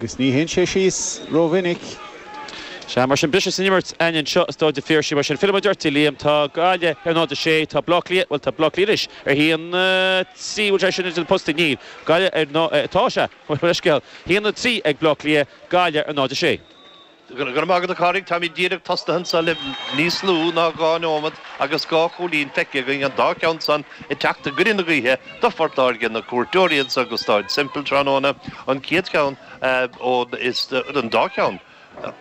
Agus ní théann sé síos ró-mhinic. Sea, mar sin, briseadh san imirt againn anseo i Stáid an Phiarsaigh. Mar sin, fillfidh muid ort, a Liam. Tá Gaillimh ar 0-6. Tá Bleá Cliath, bhuel, tá Bleá Cliath anois ar 1-3. Bhfuil sé sin idir na postaí? Níl. Gaillimh ar, tá, sea, bhuel, leithscéal. 1-3 ag Bleá Cliath, Gaillimh ar 0-6. Go raibh maith agat, a Chárthaigh. Táimíd díreach tosnaithe anso le níos lú ná dhá neomat agus dhá chúilín feicthe againn, an dá cheann san ag teacht i gcoinne na gaoithe do Phort Láirge, na cuairteoirí anso go Stáid Semple tráthnóna, an chéad cheann ón, is an dá cheann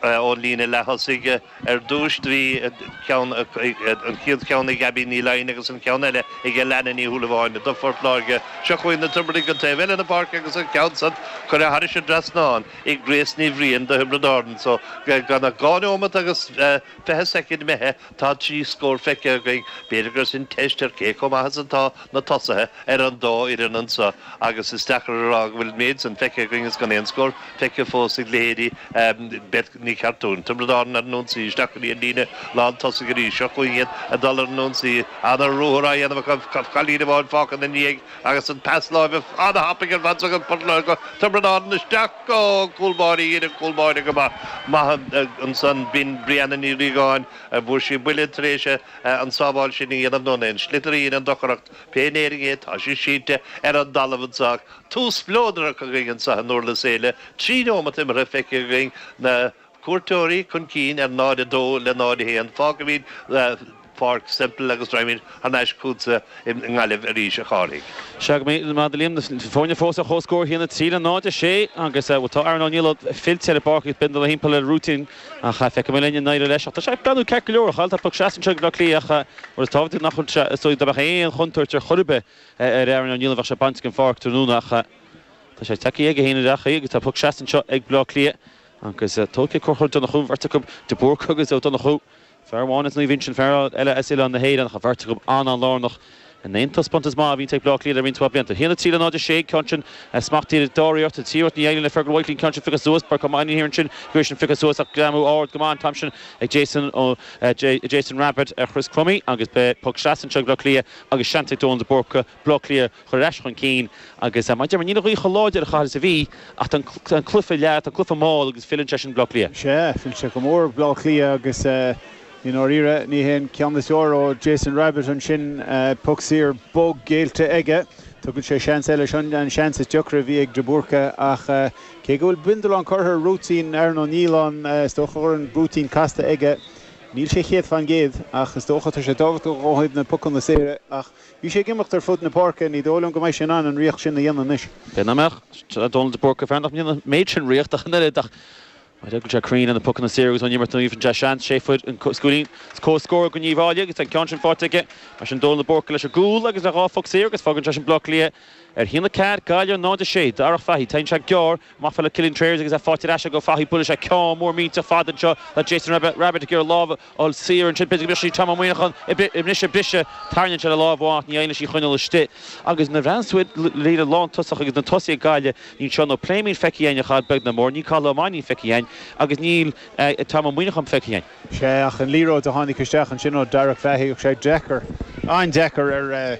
ón líne leath-thosaigh ar dtúis. Do bhí ceann, an chéad cheann ag Abby Ní Fhloinn agus an ceann eile ag Alannah Ní Shúilleabháin do Phort Láirge. Seo chugainn na Tiobradaigh an taobh eile na páirce agus an ceann san curtha thairis an dtrasnán. ag Grace Ní Bhriain do Thiobraid Árann anso gan ach dhá neomat agus fiche soicind imithe tá trí scór feicthe againn. B'fhéidir gur sin teist ar cé chomh maith is atá na tosaithe ar an dá fhoireann anso agus is deacair a rá go bhfuil an méid san feicthe againn is gan aon scór feicthe fós ag leithéidí Beth Ní Chartúin. Tiobraid Árann ar an ionsaí isteach go dtí an líne lántosaigh arís. Seo chugainn iad ag dul ar an ionsaí. An-ruathar á dhéanamh acu. Cailín amháin fágtha ina ndiaidh. Agus an pas láimhe an-thapaidh ar fad agat, Buttler, do Thiobraid Árann isteach go cúl báire dhein an cúl báire go maith maith ansan b'in Brianna Ní Riagáin an bhfuair sí buille tar éis an sábháil sin a dhéanamh nó an é an sliotar a dhein an deacracht pé in Éirinn é tá sí sínte ar an dtalamh anso ach tús spleodrach againn anso i nDurlas Éile trí neomat imeartha feicthe againn na cuairteoirí chun cinn ar 0 2 le 0 1. Fágfaimíd Páirc Semple agus raghaimíd thar n-ais chughatsa i nGaillimh arís, a Chárthaigh. Go raibh maith agat, a Liam, na foirne fós ar chomhscór, 1-3 le 0-6, agus tá Aaron Ó Nialláin fillte ar an bpáirc agus bindealán timpeall ar a rúitín ach feicfidh muid linn i ndeireadh leis ach tá sé ag breathnú ceart go leor a Chathail, tá poc sleasa anseo ag Bleá Cliath ach rud is tábhachtaí nach bhfuil sé, is dóigh dá mbeadh aon chontúirt ar chor ar bith ar Aaron Ó Nialláin bheadh sé bainte den pháirc tráthnóna ach tá sé ag teacht chuige féin ar gach chaoi agus tá poc sleasa anseo ag Bleá Cliath. Agus tóigfidh Conchúr Ó Donnchú, an bheirt acu, de Búrca agus Ó Donnchú. Fear amháin as Naomh Uinsionn, fear eile as Oileán na hÉireann, ach an bheirt acu an-an-lárnach in aon taispeántas maith a bhíonn ag Bleá Cliath le roinnt mhaith blianta. 1-3 le 0-6 an ceann sin. Smacht díreach dá réir orthu. Trí úd Ní Uidhlín le Fergal Whitely an ceann sin pioctha suas. Pádraic Mannion atá thiar ansin go bhfuil sin pioctha suas ach greamú ard go maith an t-am sin ag Jason, ó Jason Rabbitte ar Chris Crummey agus beidh poc sleasa anseo ag Bleá Cliath agus seans ag Dónal de Búrca Bleá Cliath a chur ar ais chun cinn agus mar a deir mé, níl an ghaoth chomh láidir ar chaoi ar bith is a bhí ach tá an cluiche leath, tá an cluiche mall agus feileann sé sin Bleá Cliath. Sea, feilfidh sé go mór Bleá Cliath agus i ndáiríre ní hé an ceann is fearr ó Jason Rabbitte ansin. Poc saor bog géillte aige. Tugann sé seans eile. Seo an seans is deacra a bhí ag De Búrca ach cé go bhfuil bindealán curtha ar rúitín Aaron Ó Nialláin, is dócha go bhfuil an rúitín casta aige. Níl sé céad faoin gcéad ach is dócha tá sé tábhachtach ó thaobh na pucanna saora ach, Bhí sé ag imeacht ar fud na páirce. Ní dóigh liom go mbeidh sé in ann an ritheacht sin a dhéanamh anois. B'fhéidir nach mbeadh. Tá Dónal de Búrca fear nach ndéanann an méid sin ritheacht ach an oiread ach má d'eagraigh sé cruinn le na pucanna saora agus ón imirt aoibhinn sin tá seans sé fuil an cúilín is comhscór go Uíbh Fhailí agus tá an ceann sin faighte aige mar sin Dónal de Búrca leis an gcúl agus le dhá phuc saor agus fágann sé sin Baile Átha Cliath Ar a haon a ceathair, Gaillimh, 0, 6, Darach Fahy, Tugann sé gearr amach í le Cillian Trayers agus é faighte ar ais acu, Fahy, Buaileann sé ceann mór millteach fada anseo le Jason Rabbitte, Rabbitte ag iarraidh a lámh a fháil saor ansin, b'fhéidir go mbeadh sí ag Tom Monaghan anois ag briseadh, tarraingíonn sé a lámh amach ach ní féidir í a choinneáil istigh agus nuair bheas tú id' líne lántosach agus na tosaithe ag Gaillimh níl Seán Ó Pléimín feicthe againn beag nó mór, níl Cathal Ó Mainnín feicthe againn agus níl Tom Monaghan feicthe againn. sé ach an liathróid a tháinig isteach ansin ó Darach Fahy agus sé deacair, an-deacair ar.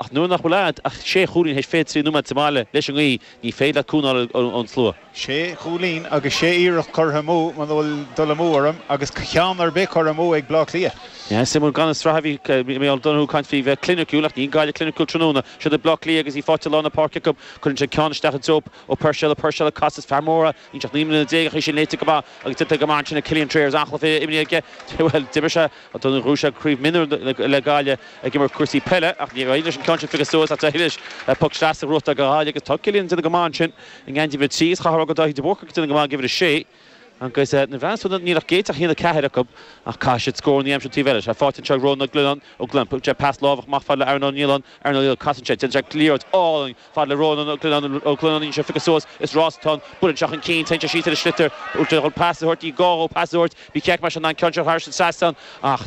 Ach nuair nach bhfuil agat ach sé chúilín théis 23 nóiméad sa mbaile leis an ngaoth, ní féidir leat cúnamh a fháil ón slua. Sé chúilín agus sé iarracht curtha amú, muna bhfuil dul amú orm, agus ceann ar bith curtha amú ag Bleá Cliath. Is iomaí gan an tsraith a bhí Mícheál Donoghue ag caint faoi bheith cliniciúil, ach níl Gaillimh cliniciúil tráthnóna. Siod é Bleá Cliath agus í fáite i lár na páirce acu. Cuireann siad ceann isteach i dtreo, Ó Puirséil, Ó Puirséil ag casadh, is fear mór é, Níl sé ach naoi mbliana déag, ach bhí sin léite go maith agus déanta go maith ansin ag Cillian Trayers. Amhlaidh a bhí imní aige, bhuel, d'imir sé ghnóthaigh sé Craobh Mionúr le Gaillimh ag imirt cúrsaí peile, ach níor éirigh leis an ceann sin a phiocadh suas, ach d'éirigh leis puc sleasa a ghnóthachtáil do Ghaillimh agus tá Cillian ag déanamh go maith ansin i ngeansaí uimhir a trí agus chaithfeá rá go bhfuil Dáithí de Búrca ag déanamh go maith ag uimhir a sé agus dá bhrí sin, níl ag Áth Cliath ach a haon a ceathair acu ach caithfidh siad scóranna a aimsiú an taobh eile. Sea, faighte anseo ag Rónán Ó Gleannáin, Ó Gleannáin, tugann sé pas láimhe amach fada le Aaron Ó Nialláin, Aaron Ó Nialláin, casann sé, déanann sé liathróid álainn, Fad le Rónán Ó Gleannáin anseo a phiocas suas is rás atá ar bun anseo chun cinn teinntear síos ar an sliotar chun pas a thabhairt ní gá dhó pas a thabhairt bhí an ceart mar sin ná an ceann seo thar an trasnán ach